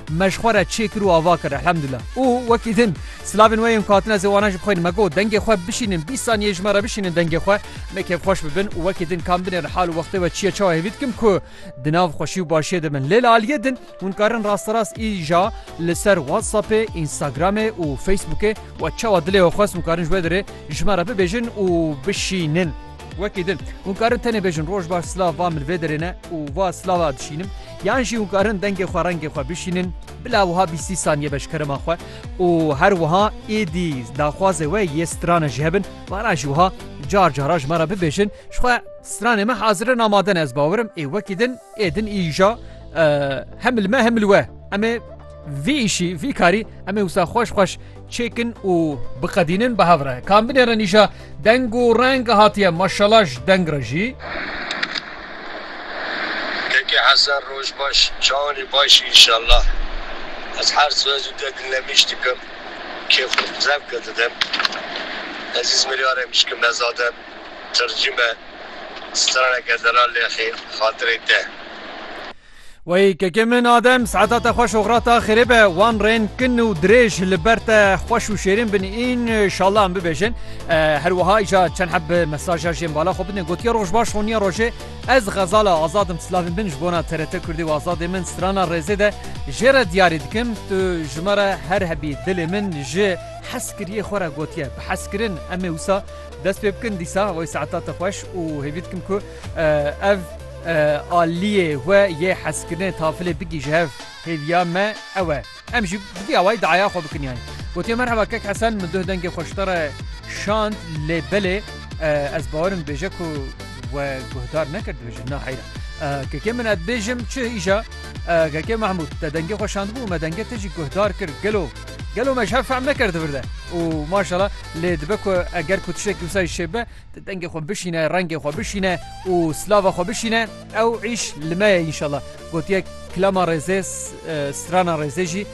Me ji xwe re çê kir û ava kir elhemdullah. Û wekî din silavên we yên ku hatine zêwana ji bi xwe yên me got dengê xwe bişînin bîst saniyeyê ji me re bişînin dengê xwe me kêfxweş bibin û wekî din kam binêrin hal û wextê we çi ye çawa hêvî dikim ku di nav xweşî û başiyê de bin. Lê li aliyê din hûn karin rasterast îja li ser whatsappê, instagramê û facebookê we çawa dilê we xwest hûn karin ji wê derê ji me re bibêjin û bişînin. Wekî din hûn karin tenê bêjin roj baş silav va min vê derê ne û va silava dişînim. Yan jî hûn karin dengê xwe rengê xwe bişînin bila wiha bîst sî sanîye beşkerema xwe û her wiha êdî daxwazê we yê strana jî hebin vana jî wiha car cara ji me re bibêjin ji xwe stranê me hazir in amade ne ez bawer im ê wekî din ê din îja hem li me hem li we em ê vî îşî vî karî em ê wisa xweş xweş Çêkin û biqedînin bi hev re. Kan binêrin îşa deng û reng hatiye maşala ji deng re jî. Keke Hesen roj baş çawanê baş î inşallah ez her sibe zû te dinlemîş dikim kêf û zevke didim ez îzmîrî are mişkim ne zaden tircîme straneke dera lêxê xatirê te. Wey kekê min Adem saeta te xweş oxira te xêrê be wan rên kin û dirêj li ber te xweş û şêrîn bin înşallah em bibêjin her wiha îja çend heb mesaja jê bala xwe bidin gotiye roj baş honiya rojê ez xezala azadim silavên bin ji bona TRT Kurdî û azadê min strana rêzê de jê re diyarî dikim tu ji me re her hebî dilê min ji hez kiriyê xwe re gotiye bi hezkirin em ê wisa dest pê bikin dîsa wey saeta te xweş û hêvî dikim ku Ev aliyê we yê hezkirinê tafilê bigî ji hev hêviya me ew e. Em jî bi vî awayî diaya xwe bikin yanî. Gotiye merheba kek Hesen min duh dengê xwe ji te re şand lê belê ez bawerim dibêje ku we guhdar nekir dibêje na heyra. Kekê min ez dibêjim çi îja Kekê Mahmûd te dengê xwe şandibû me dengê te jî guhdar kir gelo gelo me ji hev fehm nekir di vir de û maşala lê dibe ku eger ku tiştekî wisa jî şêbibe Di dengê xwe bişîne, rengê xwe bişîne û silava xwe bişîne, ew îş li me ye înşallah. Gotiye kilama rêzê, strana rêzê jî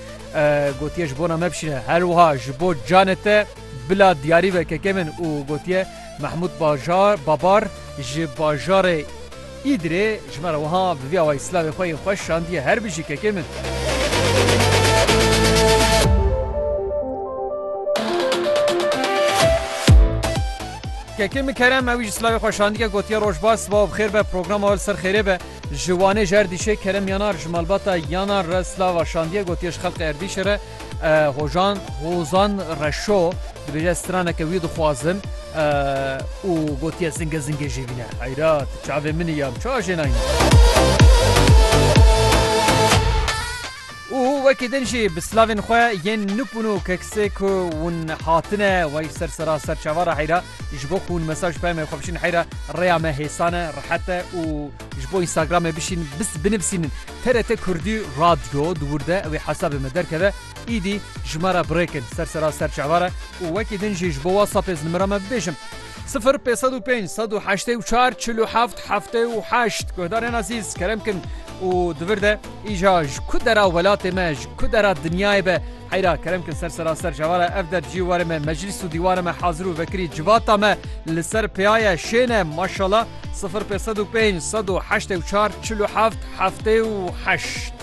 gotiye ji bona me bişîne. Her wiha ji bo canê te bila diyarî be kekê min û gotiye Mehmûd Bajar Babar ji bajarê Îdirê ji me re wiha bi vî awayî silavê xwe yên xweş şandiye, Her bijî kekê min. Kekê min Kerem ewî ji silavê xwe şandiye gotiye roj baş sibaw bi xêr be programa we li ser xêrê be. Ji Wanê ji Erdîşê Kerem Yanar ji malbata Yanar re silava şandiye gotiye ji xelkê Erdîşê re Hojan Hozan Reşo. Dibêje ez straneke wî dixwazim û gotiye zingê zingê jê vîne. Heyra tu çavê min î ya min çawa jê nayîne. Û wekî din jî bi silavên xwe yên nûk û nûk kesê ku hûn hatine wey ser sera ser çava re heyra ji bo ku hûn mesaj peyme xwe bişîn heyra rêya me hêsan e rehet e û ji bo Instagramê bişîn binivîsînin TRT Kurdî Radyo di wir de ew ê hesabê me derkeve Îdî ji me re birêk in ser sera serçava re û wekî din jî ji bo WhatsApp ê nimira me bibêjin. Sifir pênc sed û pênc sed û heştê û çar çil û heft heftê û heşt Guhdarên ezîz kerem kin û di vir de îja ji ku dera welatê me ji ku dera dinyayê be heyra kerem kin ser sera serçava re ev der cî warê me meclîs û dîwara me hazir û vekirî civata me li ser pêya ye şên e maşala sifir pênc sed û pênc sed û heştê û çar çil û heft heftê û heşt.